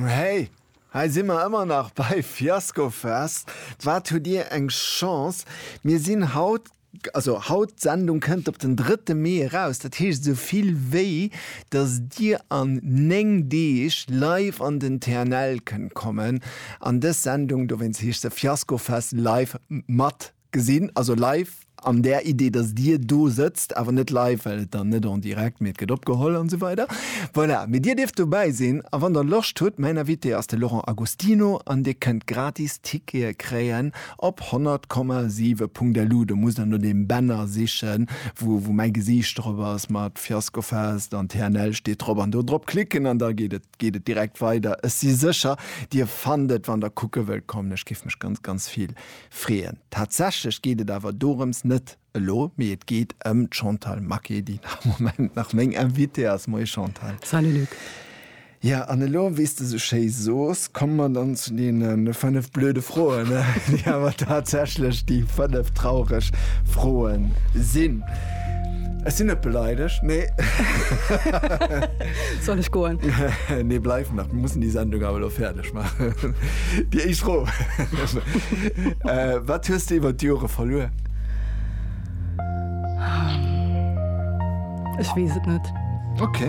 Hey, hei si mer ëmmer nach bei Fiaskofest. Wat hutt Dir eng Chance, mir sinn haut, also haut, d'Sendung kënnt op den drëtte Mee eraus, dat heescht esou vill wéi datt Dir an 9 Deeg live an den TNL kënnt kommen an dës Sendung, dowéinst heescht se Fiaskofest live, mat Gesinn, also live an där Idee, dass Dir do sëtzt, awer net live, well et dann net en direct, mee et gëtt opgeholl an esou weider. Voilà, mee Dir dierft dobäi sinn a wann Der Loscht hutt, mäin Invité ass de Laurent Agostino an Dir kënnt gratis Tickete kréien op 100,7.lu. Do musst Der no deem Banner sichen, wou mäi Gesiicht drop ass mat Fiasco Fest an TNL steet drop an do drop klicken an da geet et, geet et direkt weider. Ech si sécher, Dir fannt et, wann Der kucke wëllt kommen. Ech géif mech ganz, ganz vill freeën. Tatsächlech geet et awer dorëms net elo, mee et geet ëm d'Chantal Maquet, déi am Moment nach meng Invitée ass. Moie Chantal. Salut Luc. Jo, an elo, wéi s de esou schéi sos, komme mer dann zu deene fënnef blöde Froen, déi awer tatsächlech déi fënnef traureg Froe sinn. Ech sinn net beleidegt, mee. Soll ech goen? Nee, bleif nach, mir mussen déi Sendung awer elo fäerdeg. Déi éischt Fro, Wat hues de iwwer d'Jore verluer? Ech weess et net. Ok.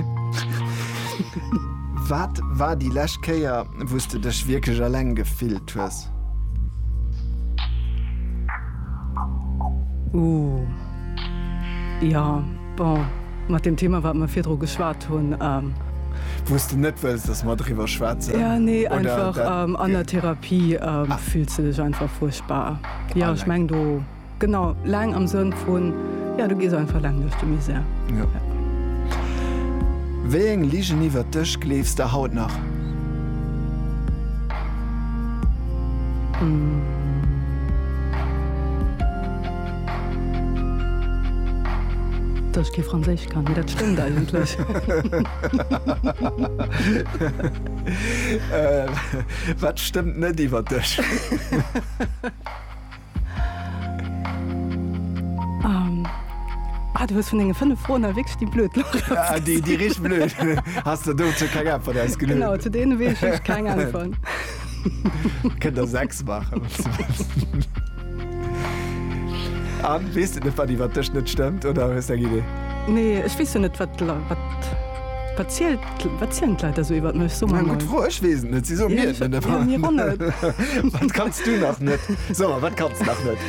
Wat war déi lescht Kéier, wou s de dech wierklech eleng gefillt hues? Ooh, jo. Bon, mat deem Thema, wat mer virdru geschwat hunn. Wou s de net wëlls, dass mer driwwer schwätzen? Jo, nee, einfach an der Therapie fills de dech einfach fuerchtbar. Jo, ech meng do, genau, laang am Sënn vun, jo, du gees einfach laang duerch de Misär. Jo. Wéi eng Ligen iwwert dech gleefs de haut nach? Dass ech kee Franséisch kann, mee dat stëmmt eigentlech. Wat stëmmt net iwwer dech? Du hues vun denge fënnef Froen awer wierklech déi blöd gelooss. Déi richteg blöd. Has de dozou keng Äntwert ausgeluecht? Genau, zu deene weess ech keng Äntwert. Kënnt der sechs maachen. Anne, weess de net, wat iwwer dech net stëmmt, oder hues de eng Idee? Nee, ech weess jo net, wat d'Leit, wat, wat zielt, wat zielen d'Leit da sou iwwert mech? So mal. Gutt Fro, ech weess et net, si soen mir et net. Jo, mir och net. Wat kanns du nach net? So mal, wat kanns de nach net?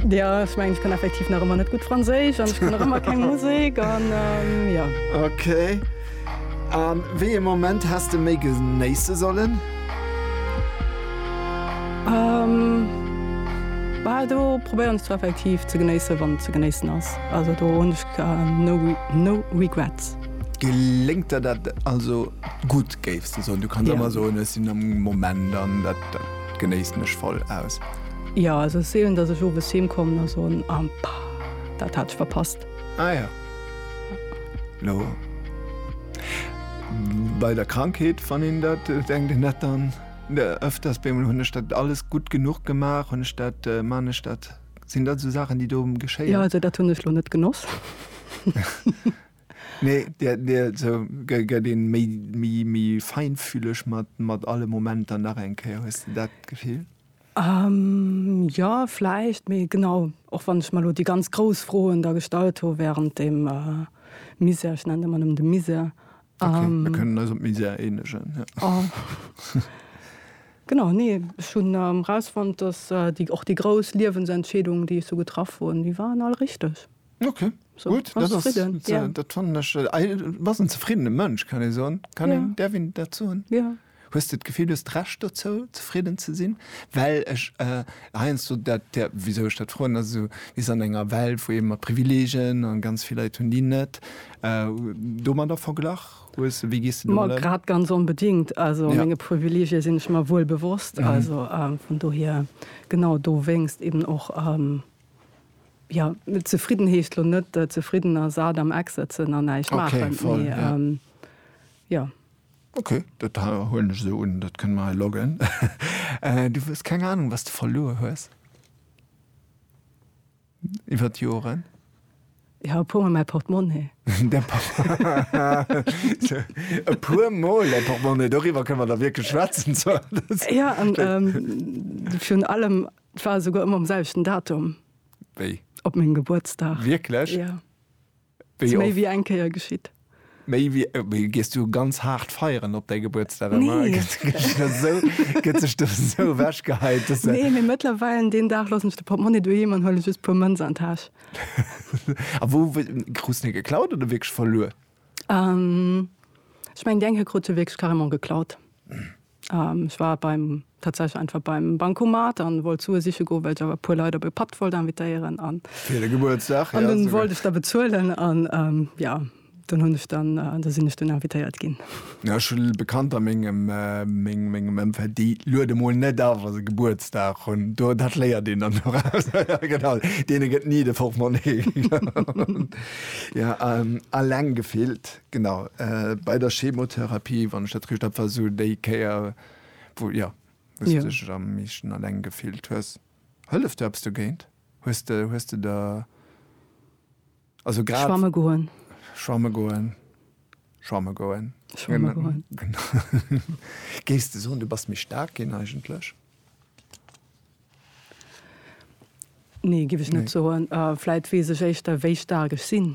Jo, ech mengen, ech kann effektiv nach ëmmer net gutt Franséisch an ech kann nach ëmmer keng Musek an, jo. Okay. A wéi ee Moment häss de méi genéisse sollen? Bal do probéieren ech zwar effektiv ze genéissen, wann ze genéissen ass. Also do hunn ech no regrets. Geléngt der dat also gutt, géifs de soen? Du kanns ëmmer soen, ech sinn am Moment an dat genéissen ech voll aus. Jo, also et ass seelen, datt ech owes heem kommen a soen, Ah, dat hat ech verpasst. Ah ja. No. Bei der Krankheet wann een dat äh, denkt en dat dann äh, öfters bemol hunn ech dat alles gutt genuch gemaach, hunn ech dat, äh, man ech dat, sinn dat esou Saachen déi do Ja, geschéien? also dat hunn ech lo net genoss. Nee, dir, dir sou, gëtt, gëtt een méi, méi, méi feinfühleg mat, mat alle Momenter nach eng Kéier? Hues de dat Gefill? Jo, vläicht. Mee genau, och wann ech mer elo déi ganz grouss Froen da gestallt hu wärend deem Misär, ech nennen et ëmmer nëmmen de Misär. Ok, mir kënnen eis op Misär eenegen. Genau, nee, ech hunn erausfonnt, dass och déi grouss Liewensentscheedungen, déi ech sou getraff hunn, déi waren all richteg. Ok, gutt, dat ass, dat fannen ech, e bassen zefriddene Mënsch, kann ee soen. Kann een, däerf een dat soen? Jo. Hues de d'Gefill, du hues d'Recht dozou, zefridden ze sinn? Well ech heiansdo dat, wisou ech dat froen, ass esou, mir sinn an enger Welt, wou ee mat Privileegien, a ganz vill Leit hunn déi net, domadder verglach hues. Wéi gees de domat ëm? Ma grad ganz onbedéngt. Also menge Privileegie sinn ech mer wuel bewosst. Also vun dohier, genau dowéinst eben och, jo, zefridden heescht lo net zefridden a sat am Eck sëtzen an näischt maachen, mee jo. Ok, dat huelen ech esou un. Dat kënne mer hei loggen. Du hues keng Anung, was de verluer hues iwwert d'Joren? Jo, e puermol mäi Portemonnaie. E puermol däi Portemonnaie, doriwwer kënne mer da wierklech schwätzen. Jo, an virun allem, et war esouguer ëmmer um selwechten Datum. Wéi? Op mengem Gebuertsdag. Wierklech? Jo. Wéi Méi oft? wéi eng Kéier geschitt. Méi wéi, wéi gees du ganz haart feieren op däi Gebuertsdag ëmmer? Nee. Gëtt gëtt sech do esou, gëtt sech do esou ewech geheit, dass se. Nee, mee mëttlerweil deen Dag loossen ech de Portmonni doheem an huele just puer Mënz an d'Täsch. A wou wou, krus de geklaut oder wierklech verluer? Ech mengen déi eng hei krut se wierklech carrément geklaut. Ech war beim, tatsächlech einfach beim Bancomat an wollt Sue siche goen, well ech awer e puer Leit op e Patt wollt invitéieren an. Fir de Gebuertsdag, ja. An dunn wollt ech da bezuelen an, ja, dunn hunn ech dann, da sinn ech dunn invitéiert ginn. Ja, ech hu Bekannter a mengem, mengem Ëmfeld, déi luede mol net a wa se Gebuertsdag hunn. Do, dat léiert een dann doraus. Ja, genau, deene gëtt ni de Portmonni. Ja, alleng gefillt. Genau, bei der Chemotherapie, wann ech dat richt hab, war sou déi Kéier, wou, jo, wou s de dech am meeschten alleng gefillt hues. Hëlleft do eppes dogéint? Hues de, hues de der, also grad. Schwamme goen. Schwamme goen. Schwamme goen. Schwamme goen. Géifs de soen, du bass méi staark ginn eigentlech? Nee, géif ech net soen. Vläit weess ech éischter, wéi staark ech sinn.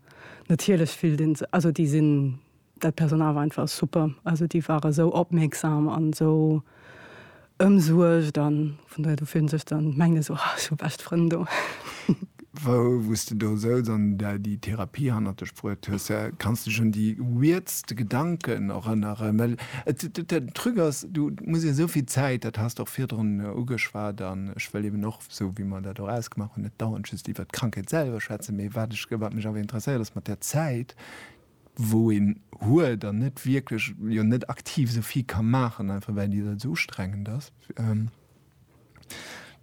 natierlech fillt een sech, also déi sinn, dat Personal war einfach super, also déi ware sou opmierksam an sou ëmsuergt an vun dohier, du fillt een sech dann, mengt een sou, ech hu bescht Frënn do. Wou s de do souz an där déi Therapie hannert dech bruet hues, kanns dech un déi weirdste Gedanken erënneren? Well et, den Truc ass, du muss jo souvill Zäit, dat has de och virdrun ugeschwat an ech wëll eben och, esou wéi mer dat och ausgemaach hunn, net dauernd just iwwert d'Krankheet selwer schwätzen, mee wat ech, wat mech awer interesséiert ass mat där Zäit, wou een huet an net wierklech, jo net aktiv esou vill ka maachen, einfach well déi Zäit esou ustrengend ass,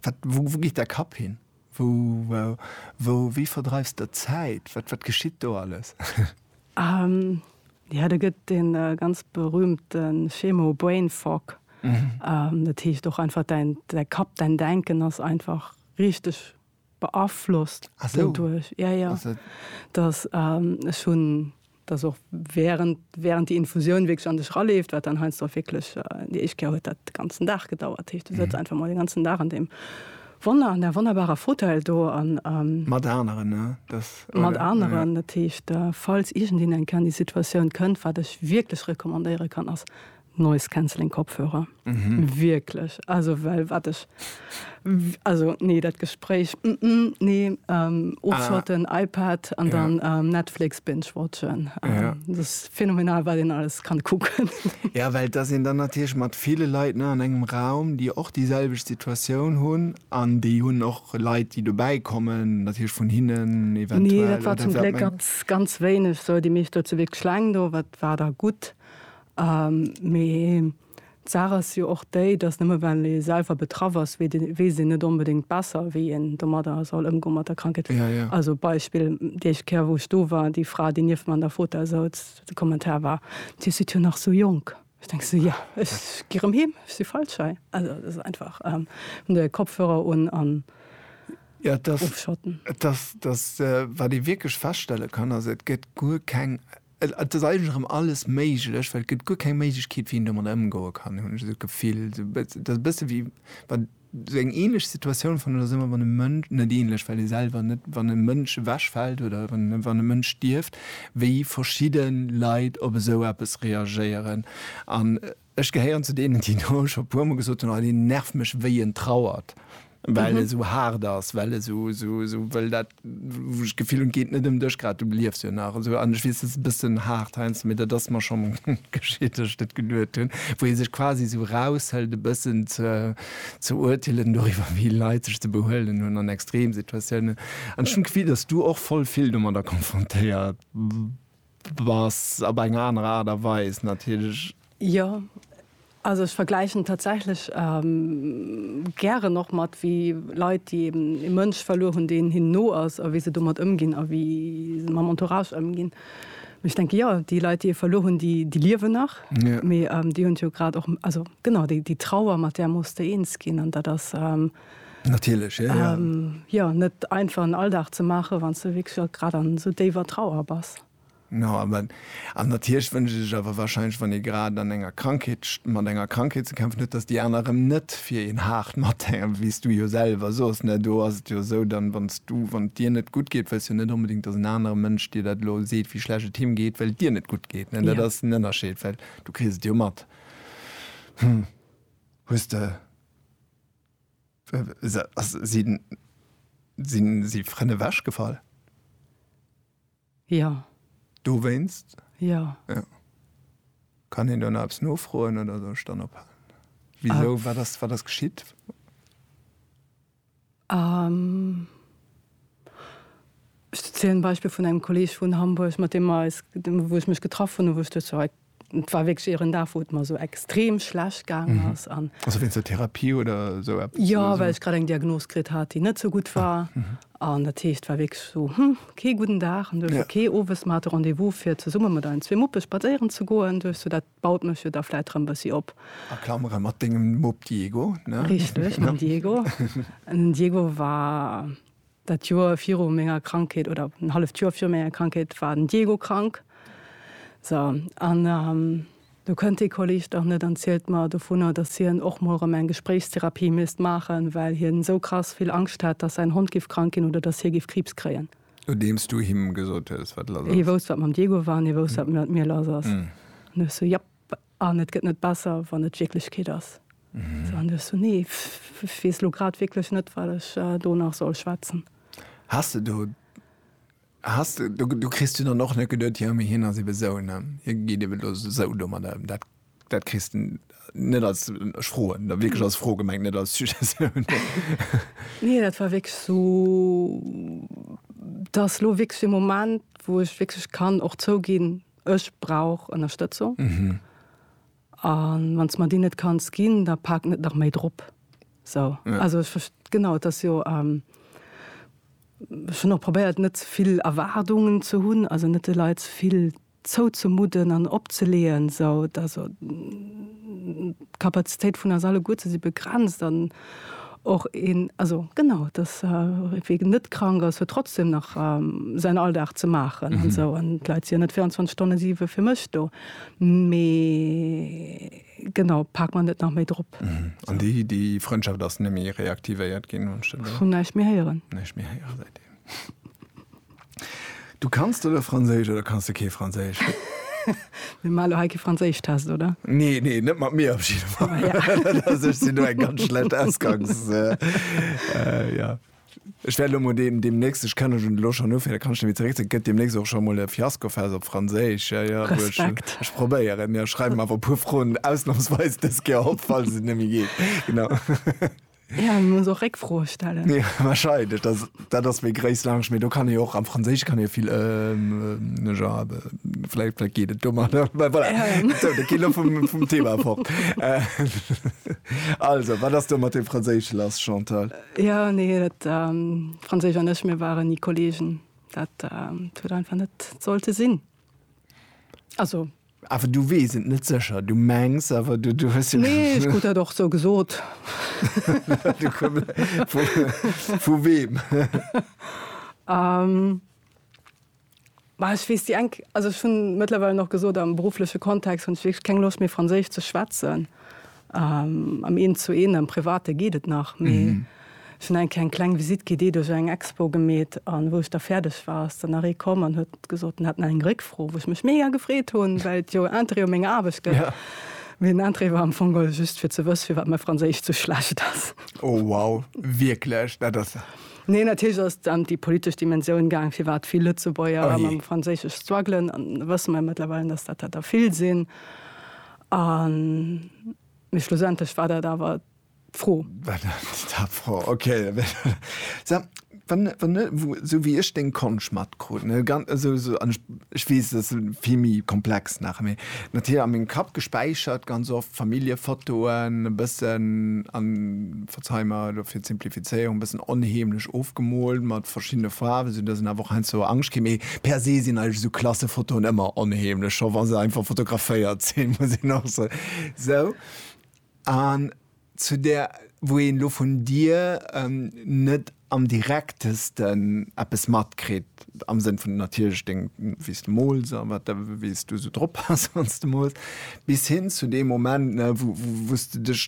wat, wou, wou geet däi Kapp hin? Wou, wou, wéi verdreifs de d'Zäit? Wat, wat geschitt do alles? Jo, do gëtt dee ganz berühmte Schemo Brain Fog. Dat heescht och einfach däin Kapp, däin Denken ass einfach richteg beaflosst doduerch. Jo, jo. Dass ech hunn, dass och während, während déi Infusioun wierklech an dech eraleeft, wat dann heiansdo och wierklech, déi éischt Kéier huet dat de ganzen Dag gedauert. Dat heescht, du sëtz einfach emol den ganzen Dag an deem. Wonner an där wonnerbarer Fauteuil do an. Mat aneren, ne? Dass, oder? Mat aneren. Dat heescht, falls iergendeen eng Kéier an déi Situatioun kënnt, wat ech wierklech recommandéiere kann, ass Noise Cancelling Kopfhörer. Wierklech. Also, well wat ech, also, nee, dat Gespréich, nee, ofschotten, iPad an dann Netflix binge-watchen. Dat ass. Phänomenal wat een alles kann kucken. Ja well et ass een dann natierlech mat ville Leit ne an engem Raum déi och déi selwecht Situatioun hunn an déi hunn och Leit déi dobäi kommen natierlech vun hinnen eventuell. Nee dat war zum Gléck ganz ganz wéineg sou déi meescht do zu Wierkleng do wat war da gutt mee. D'Saach ass jo och déi, dass nëmme well ee selwer betraff ass, weess een net onbedéngt besser, wéi een domadder soll ëmgoen, mat der Krankheet. Also Beispill, déi éischt Kéier, wou ech do war, déi Fra, déi nieft mer an der Fota souz, de Kommentar war, Dir sidd jo nach sou jonk. Du denks esou, Jo, ech gi rëm heem, ech si feilschei. Also et ass einfach, de Kopfhörer un an ofschotten. Et ass, wat ee wierklech feststelle kann, ass, Et gëtt guer keng. Et ass eigentlech erëm alles méiglech, well et gëtt guer keng Méiglechkeet, wéi een domadder ëmgoe kann, hunn ech esou d'Gefill. Et ass e bësse wéi wann, esou eng änlech Situatioun fannen ech dat ëmmer, wann e Mënsch, net änlech, well ee selwer net, wann e Mënsch ewechfält oder wann e Mënsch stierft, wéi verschidde Leit op esou eppes reagéieren. An Ech gehéieren zu deenen, déi do scho e puermol gesot hunn, Oh, deen nervt mech, wéi en trauert, well e sou haart ass, well e sou, sou, sou wëll dat, wou ech d'Gefill hunn, et geet net ëm dech grad, du liefs jo nach esou. An ech weess, dat ass e bëssen haart heiansdo, mee dat ass mer scho geschitt, datt ech dat geduet hunn, wou ee sech quasi sou eraushëlt, e bëssen ze, ze urteelen doriwwer, wéi Leit sech ze behuelen hunn an Extremsituatiounen. An ech hunn d'Gefill, datt s du och voll vill domadder konfrontéiert. Bass op eng aner Aart a Weis natierlech. Jo, also ech vergläichen et tatsächlech gären och mat wéi Leit, déi eben ee Mënsch verluer hunn, deen hinnen no ass, a wéi se domat ëmginn a wéi se mam Entourage ëmginn. Mee ech denke jo, déi Leit, déi ee verluer hunn, déi liewen nach, mee déi hunn et jo grad och, also genau déi Trauer, mat där muss de eens ginn an dat ass. Natierlech, jo. Jo, net einfach en Alldag ze maachen, wann s de wierklech och grad an esou déiwer Trauer bass. No, awer, an natierlech wënscht ee sech awer wahrscheinlech, wann ee grad an enger Krankheet, mat enger Krankheet ze kämpfen huet, datt déi aner erëm net fir een haart mathänken, wéi s du jo selwer sos, ne? Do ass et jo esou, dann, wann s du, wann et dir net gutt geet, wëlls jo net onbedéngt, datt en anere Mënsch dir dat elo seet, wéi schlecht et him geet, well et dir net gutt geet, ne? Dat ass den Ënnerscheed, well du kriss et jo mat. Hm, hues de. Sinn si Frënn ewech gefall? Jo. Dowéinst? Jo. Kann een do nach eppes nofroen oder soll ech dann ophalen? Wisou, wat ass geschitt? Ech zielen d'Beispill vun engem Kolleg vun Hamburg, mat deem mer eis, wou ech mech getraff hunn, wou ech duecht, jo, et war wierklech ieren Dag, wou et mer esou extrem schlecht gaangen ass an. Also wéinst der Therapie oder esou eppes? Jo, well ech grad eng Diagnos kritt hat, déi net esou gutt war. An dat heescht, et war wierklech esou, hm, kee gudden Dag. An du hues jo kee owes, mer hate Rendez-vous fir zesumme mat eisen zwee Muppe spadséieren ze goen. Du hues jo dat Baut mech jo da vläit rëm bëssi op. A Klamere mat dengem Mupp Diego, ne? Richteg, mam Diego. Den Diego war dat Joer viru menger Krankheet, oder en halleft Joer viru menger Krankheet war den Diego krank. So, an do kënnt dee Kolleg dach net an zielt mer dovunner, dass hien och mol rëm eng Gespréichstherapie misst maachen, well hien esou krass vill Angscht hätt, dass säin Hond giff krank ginn oder dass hie giff Kriibs kréien. Nodeems du him gesot hues, wat lass ass. Hie wousst, wat mam Diego war, an hie wousst, wat mat mir lass ass. An du hues sou, Japp, an et gëtt net besser, wann et d'Wierklechkeet ass. Sou, an du hues sou, Nee, ech weess elo grad wierklech net, wat ech do nach soll schwätzen. Has de do, has de, do kriss du dann och net geduet, Jo, mee hien ass ebe sou, ne, hie geet ebe elo sou domadder ëm. Dat. Dat kriss de net als, ech froen da wierklech als Fro gemengt, net als Suggestioun. Nee, dat war wierklech esou, dass elo wierklech e Moment, wou ech wierklech kann och zouginn, ech brauch Ënnerstëtzung. A wann s de mer déi net kanns ginn, da pak net nach méi drop. Esou, also ech verst-, genau, et ass jo, ech hunn och probéiert, net ze vill Erwaardungen ze hunn, also net de Leit ze vill. zouzemudden an opzeleeën, esou dass d'Kapazitéit vun eis alleguerten si begrenzt an och een, also genau, dass wee net krank ass, huet trotzdem nach säin Alldag ze maachen an esou an d'Leit si jo net 24 Stonne siwe fir mech do. Mee genau, pak mer net nach méi drop. An déi Frëndschaft ass net méi reaktivéiert ginn, huet scho näischt méi héieren. Näischt méi héieren seitdeem. Du kanns de lo Franséisch oder kanns de kee Franséisch? Mir maache lo hei kee Franséischtest, oder? Nee, nee, net mat mir op jidde Fall. Ah, ja. Also, ech sinn do eng ganz schlecht Ausgangs... äh, ja. Ech wäert lo mol deem, deemnächst, ech kann ech lo schonn ufänken, da kann ech nämlech zeréck, gëtt deemnächst och scho mol e Fiaskofest op Franséisch. Ja, ja, wou ech, Respekt. ech probéieren, ja, schreiwen awer e puer Froen ausnamsweis dës Kéier op, falls et net méi geet. Genau. Ja, muss och Réckfroe stellen. Ja, wahrscheinlich. Das, das ist mir Grace Lounge. Mir, du kann ich auch am Französisch kann ich viel, ähm, ne, ja, vielleicht, vielleicht geht es dummer. Voilà. Ja. So, da geht vom, vom Thema fort. Äh, also, was hast du mit dem Französisch lass, Chantal? Äh, ja, nee, das, ähm, Französisch und ich, wir waren nie Kollegen. Das, ähm, tut einfach nicht sollte Sinn. Also, Awer du weess et net sécher, du mengs awer, du, du hues jo. Nee, ech krut dat och sou gesot. Vu weem? Bah, ech weess déi eng, also ech hunn mëttlerweil och gesot, am beruffleche Kontext hunn ech wierklech keng Loscht méi Franséisch ze schwätzen. Am Eent zu Eent, am Private geet et nach, mee ech hunn eng kéier eng kleng Visitt gi, déi duerch eng Expo gemeet. An wou ech da fäerdeg war, ass dann nach ee komm an huet gesot, en hätt nach eng Réckfro, wou ech mech mega gefreet hunn, well et jo Interêt u menger Aarbecht gëtt. Mee den Interêt war am Fong just fir ze wësse firwat mäi Franséisch sou schlecht ass. Oh wow, wierklech? Dat ass ja. Nee, natierlech ass et ëm déi politesch Dimensioun gaang, firwat vill Lëtzebuerger mam Franséisch struggelen. An da wësse mer mëttlerweil, datt dat der vill sinn. A mee schlussendlech war dat awer d'Fro. War dat d'Fro, ok. Sag, wann, wann, esou wéi ech deng Konscht matkrut, ne, ganz, also esou, an ech, ech weess, et ass vill méi komplex nach, mee natierlech a mengem Kapp gespäichert ganz oft Familljefotoen e bëssen an. Jetzt hei mer elo fir d'Simplifizéierung e bëssen onheemlech ofgemoolt mat verschiddene Faarwen, sou dass een awer och heiansdo Angscht kritt. Mee per se sinn eigentlech esou Klassefotoen ëmmer onheemlech, scho wa se einfach fotograféiert sinn, muss een och soen. Sou, an zu där, wou een elo vun dir net am direktesten eppes matkritt, am Sënn vun natierlech deng, wéi s de mools a wat, wéi s du esou drop bass, wann s de mools, bis hin zu deem Moment, wou s de dech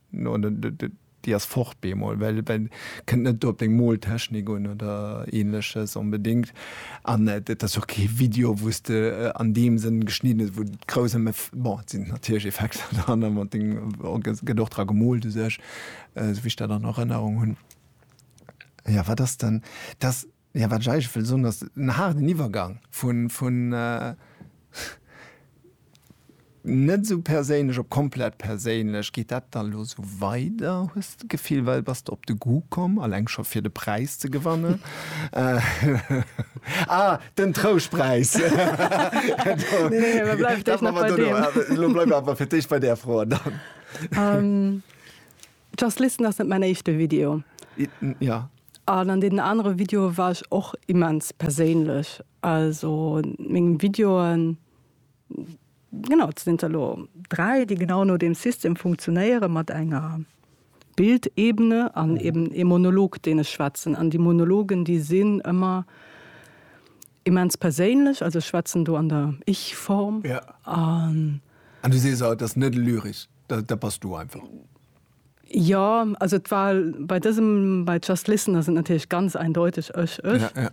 No déi ass fort bemol, well kënnt net do op deng Moltechnik un oder ähnleches onbedingt. An et ass jo och kee Video wou s de an deem Sënn geschnidden hues, wou et grouss ëm, bon et sinn natierlech Effekter dran an et gëtt och dra gemoolt u sech, esou wéi ech dat an Erënnerung hunn. Jo wat ass dann, dass. Jo, wat ech eigentlech wëll soen, ass en haarden Iwwergang vun net esou perséinlech op komplett perséinlech. Geet dat dann elo esou weider, hues de d'Gefill, well bass de op de Goût komm, alleng scho fir de Präis ze gewannen? Ah, den Trouschtpräis! Bleiwe mer bei deem. Elo bleiwe mer awer fir d'éischt bei där Fro. An dann? Just Listen ass net mäin éischte Video. Jo. An an deenen anere Videoe war ech och immens perséinlech. Also mengem Videoen, genau, et sinn der elo dräi, déi genau no deem System funktionéieren, mat enger Bildebene an eeben ee Monolog, deen ech schwätzen. An déi Monologen, déi sinn ëmmer. Immens perséinlech, also ech schwätzen do an der Ich-Form. An. An du sees, et ass net lyrisch, dat bass du einfach. Jo, also et war bei dësem, bei Just Listen ass et natierlech ganz eindeuteg ech, ech.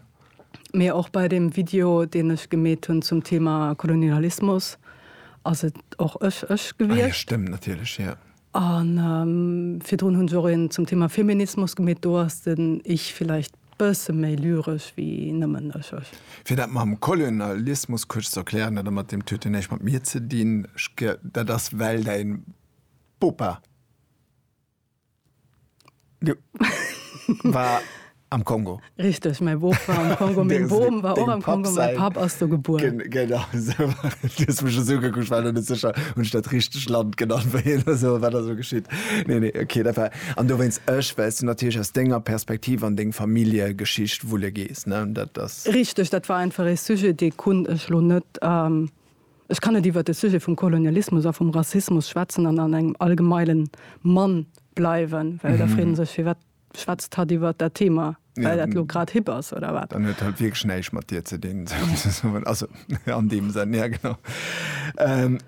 Mee och bei deem Video, deen ech gemeet hunn zum Thema Kolonialismus, ass et och ech, ech gewiescht. Ah jo, stëmmt natierlech, jo. A virdrun hunn se och een zum Thema Feminismus gemeet. Do ass den Ich villäicht bësse méi lyresch wéi nëmmen ech, ech. Fir dat mam Kolonialismus kuerz ze erklären, dat mat deem Tuet huet näischt mat mir ze dinn. Dat ass well däi Bopa. War am Kongo. Richteg, mäi Boob war am Kongo. Meng Bom war och am Kongo, mäi Papp ass do gebuer. Genau esou. Du hues mech esou ugekuckt, ech war net sécher, hunn ech dat richteg Land genannt, wou hien ass oder wat ass elo geschitt? Nee, nee, okay, dat war. An dowéinst ech, well s du natierlech aus denger Perspektiv an deng Familljegeschicht wulle gees, ne? Dat ass. Richteg, dat war einfach ee Sujet, dee konnt ech elo net. Ech kann net iwwert de Sujet vum Kolonialismus a vum Rassismus schwätzen an an engem allgemeile Mann bleiwen, well da freet ee sech, firwat schwätzt hatt iwwert dat Thema? Well dat elo grad hip ass, oder wat? Dann huet hatt wierklech näischt mat dir ze dinn, souzesoen. Also, an deem Sënn, ja genau.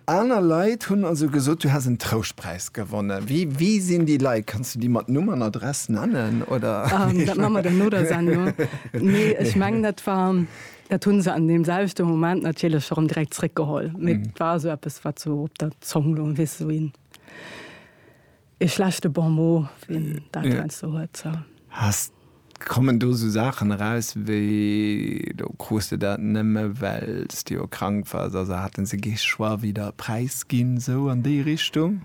Aner Leit hunn also gesot, du häss en Trouschtpräis gewonnen. Wie, wie sinn déi Leit? Kanns du déi mat Numm an Adress nennen, oder? Dat maache mer dann no der Sendung. Nee, ech mengen, dat war. Dat hunn se an deem selwechte Moment natierlech erëm direkt zréckgeholl. Mee et war esou eppes, wat esou op der Zong loung, weess esou een, ee schlechte Bon mot, wéi een dat heiansdo esou huet, sou. Has, kommen do esou Saachen eraus wéi, do krus de dat nëmme well s de jo krank wars, also haten se kee Choix wéi der e Präis ginn, sou an déi Richtung?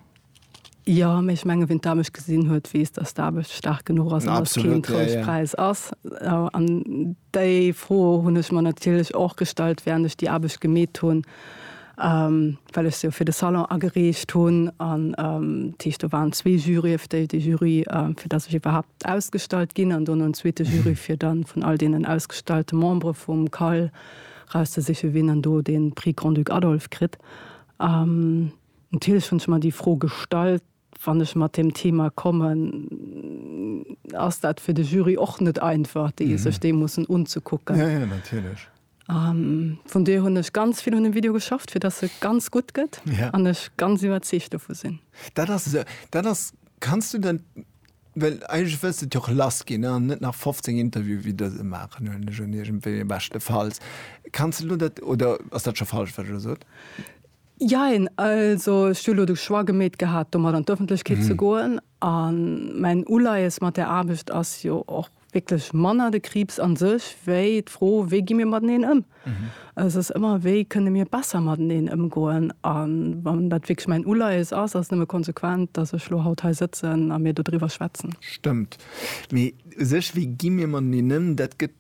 Jo, mee ech mengen, wien d'Aarbecht gesinn huet, weess, datt d'Aarbecht staark genuch ass an datt et keen Trouschtpräis ass. An déi Fro hunn ech mer natierlech och gestallt, wärend ech déi Aarbecht gemeet hunn, well ech se jo fir de Salon agereecht hunn. An dat heescht, do waren zwee Jurye fir déi, dee Jury, fir datt ech iwwerhaapt ausgestallt ginn, an dono en zweete Jury, fir da vun all deenen ausgestallte Membere vum CAL rauszesichen, wien dann do dee Prix Grand-Duc Adolphe kritt. Natierlech hunn ech mer déi Fro gestallt, wann ech mat deem Thema kommen, ass dat fir de Jury och net einfach, déi sech dee mussen unzekucken. Vun dohier hunn ech ganz vill un dem Video geschafft, fir dass e ganz gutt gëtt an ech ganz iwwerzeegt dovu sinn. Dat ass esou. Dat ass, kanns du dat, well eigentlech wëlls de et jo och lass ginn an net nach 15 Interviewe wéi dëse maachen, huelen ech un, iergendwéi, beschtefalls. Kanns de elo dat, oder ass dat scho falsch, wat ech elo sot? Jein, also ech hu elo de Choix gemeet gehat, domat an d'Öffentlechkeet ze goen. A mäin Uleies mat där Aarbecht ass jo och wierklech manner de Kriibs a sech, wéi d'Fro, wéi gi mir mateneen ëm. Et ass ëmmer, wéi kënne mir besser mateneen ëmgoen. A wann dat wierklech mäin Uleies ass, ass et nëmme konsequent, datt ech elo haut hei sëtzen a mir dodriwwer schwätzen. Stëmmt. Mee u sech, wéi gi mir mateneen ëm, dat gëtt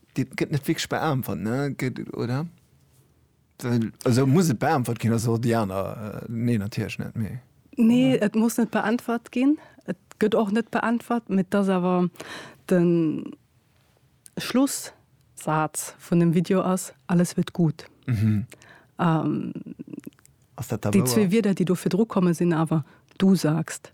net wierklech beäntwert, oder? Esou muss et beäntwert ginn, ass och déi aner Neen natierlech net méi. Nee, et muss net beäntwert ginn. Et gëtt och net beäntwert, mä et ass awer de Schlussaz vun dem Video ass, Alles wird gut. Déi zwee Wierder, déi do virdru komme sinn awer, Du sagst.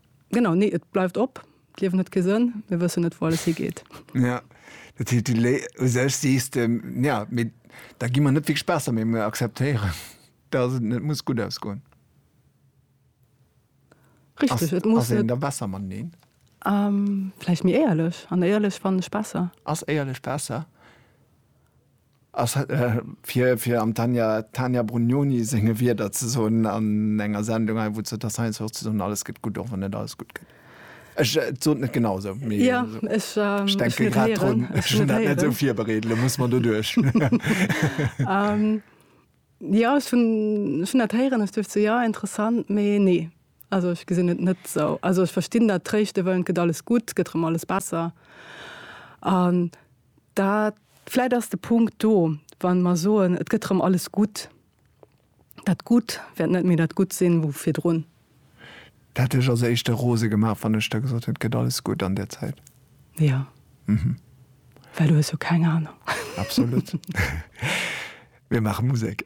Genau, nee, et bleift op. D'Liewen huet kee Sënn, mir wëssen net, wou alles higeet. Ja, dat heescht, du lé u sech sees de, ja, mee da gi mer net wierklech besser, mee mir akzeptéieren, dass et net muss gutt ausgoen. Richtig, et muss net. Ass een da besser mateneen? Ähm, vläicht méi éierlech. An éierlech fannen ech besser. Ass éierlech besser? Fir am Tania Brugnoni senge Wierder ze soen an enger Sendung hei, wou d'Jutta Stein soucht ze soen, alles gëtt gutt, och wann net alles gutt gëtt. Ech sot net genau esou, mee ech denke grad drun. Ech hunn dat net esou virbereet, elo muss mer doduerch. Jo ech hunn ech hunn dat héieren, ech duecht sou jo interessant, mee nee also ech gesinn et net sou. Also ech verstinn dat tréischte wëllen, et gëtt alles gutt, gëtt erëm alles besser an dat vläit ass de Punkt do wann mer soen et gëtt erëm alles gutt, dat Gutt wäert net méi dat Gutt sinn wou virdrun. D'hätt dech als éischte rose gemaach, wann ech der gesot hätt, et gëtt alles gutt an där Zäit. Jo. Mhm. Well du hues jo keng Anung. Absolut. Mir maache Musek.